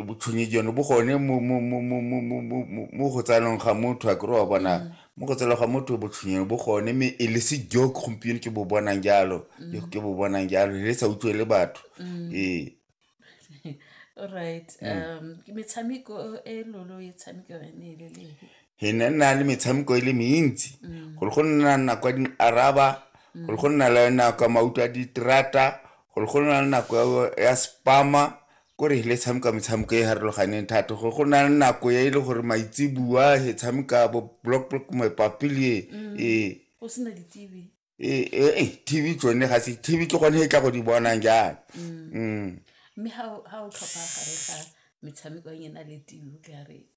botshwenyi jono bo gone mo go tsayanong ga motho a kry wa bona mm. mo go tsela ga motho botshwenyeno bo gone mme e le se joke gompieno ke bo bonang jalo mm. ke bo bonang jalo le sa utlwe le batho mm. ee alright um ke metshameko e lolo e tshameko yone e le le he ne nna le metshameko e le mentsi gore go nna nako ya dinaraba gore go nna le nako ya mauto a diterata gore go nna le nako ya spama ko re le tshameka metshameko e harologaneng thata go go na le nako e le gore maitsebua e tshameka bo block block mapapile mm. ee go sena di-tv ee, ee, ee tv tsone ga se tv ke gone e tla go di bonang jang mm. Mm. mme ga o tlhopha gare ga metshameko e na le tv ka re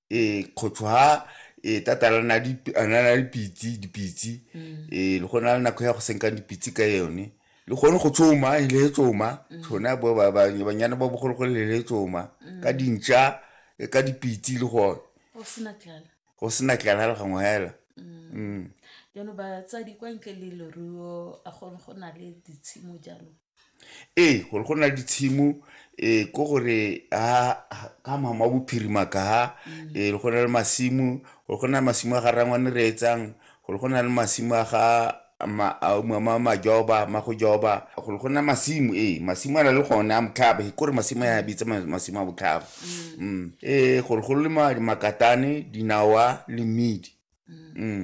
ee kgotsho ha ee tata a na le dipitsi dipitsi mm. ee le gona le nako ya go senkang dipitsi ka yone le gone go tsoma e le tsoma mm. tshona banyana ba bogologolo le le tsoma mm. ka dintša e ka dipitsi le gone go sena tlala le gangwe hela jaanong batsadi kwa ntle le leruo a gone go na le ditshimo jaanong Ee, gore go na le ditshimo um ko gore ka mama wa bophirima kaha um mm. go na le masimo gore go na le masimo a ga rangwane re etsang gore go na le masimo a ga mama majoba ma go joba gore go na masimo ee masimo a na le gone a motlhaba e kore masimo a bitsa masimo a botlhaba um mm. ee gore go le makatane dinawa le mmidi um